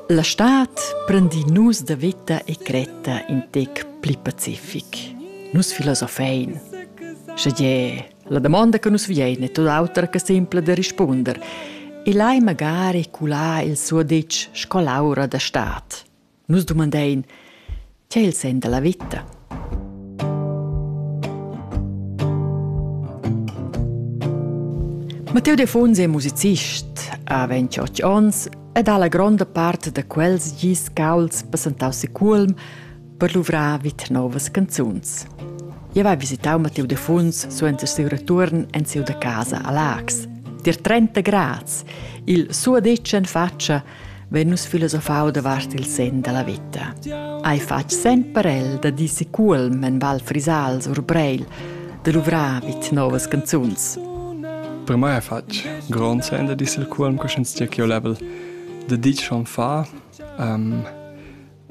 La stad prendi nus da veta e cretta in tec pli pacific. Nus filosofein. Sche gie, la domanda che nus viein è tut autra che simpla da rispunder. E lai magari culà il suo ditg sco l'aura da stad. Nus dumandein, tgei il sen dalla vita? Matteo Defonsi è musicist, ha 28 onns ed ha la gronda part da quels gis cauls passentau si Cuolm per luvrar vit novas canzuns. Eu va visitau Matteo Defuns suenter siu return en siu da casa a Lax. Dir 30 grads, il suo decen faccia vegn nus filosofau davart il sen dalla veta. Ei fatg sen per el da dir seculm en Val Frisals or Breil, da luvrar vid novas canzuns. Per mai è fatg grond sen da dir il culm che sch'ins dia ch'io level da dir schon fa um,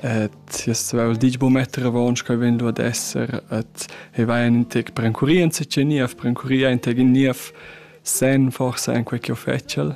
et jes vel dich bo metter avons che vegn du ad esser et e vai in tec per encurir in se niev per encurir in tec in niev sen forse en quei che fetschel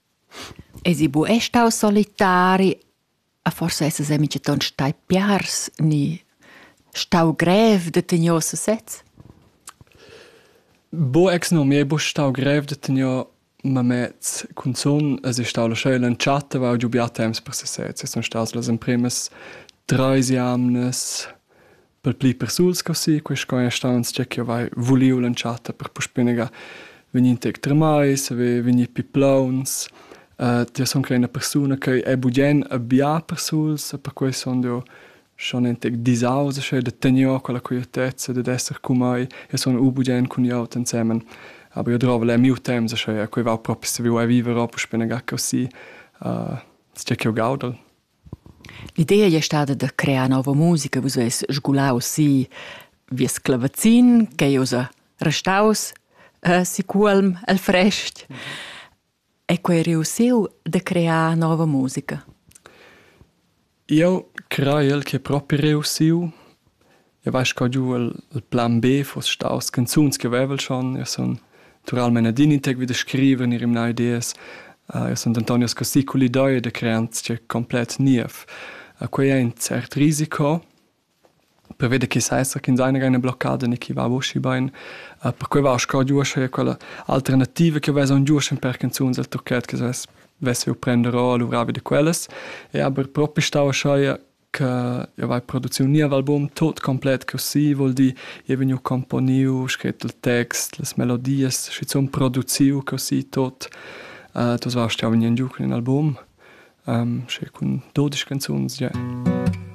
Esi bu ei stau solitari? A forsa essas ei mintgaton stai piars ni stau grev da tegner sesez? Bo ex no, mi ei buca stau grev da tegner mamets cunzun. Es ei stau la scheu l'entschatta, va giu bia temps per sesez. E sun stas las empremas treis jamnas per pli persuls co si, quei sco ei staus tgei ch'jeu vai vuliu l'entschatta per puspei negar vegnir tec tremais, vegnir pli plauns. jeu sun quella ina persuna che è bugien bia persuls e perquei sun jeu schon in tec disaus aschi da tenor quella quietezza dad esser cun mei e sun u bugien cun glieud ensemen. Aber jeu drova leu miu temps aschi e quei va propi saviu ei viver o puspei negar così. tgei ch'jeu gaudel. L'idea ei stada da crear nova musica, vus eis sgulaus si vies clavazin ch'ei ussa restaus eh, si Cuolm el frest e quei ei reussiu da crear nova musica. Eu craiel che propi reussiu. Eu vai sco giu il plan B fuss staus canzuns che vevel schon. Eu sun naturalmein adin in tec vi da scriver, ir imnà ideas. Uh, eu sun denton scossì cul idea da crear sia complet niev. Uh, quei è in cert risiko, prevede che sa esser che seine eine Blockade ne chi va voci bain uh, per quei va sco giusch e quella alternativa che vesa un giusch per canzuns al tocchet che se vesse prendere o luvravi de quellas e aber propi stava schai che io vai produziu nia album tot complet così vuol dir io vegniu componiu scret il text las melodias schizun produziu così tot uh, das warst ja vegniu giu cun in album um, sche cun 12 canzuns yeah.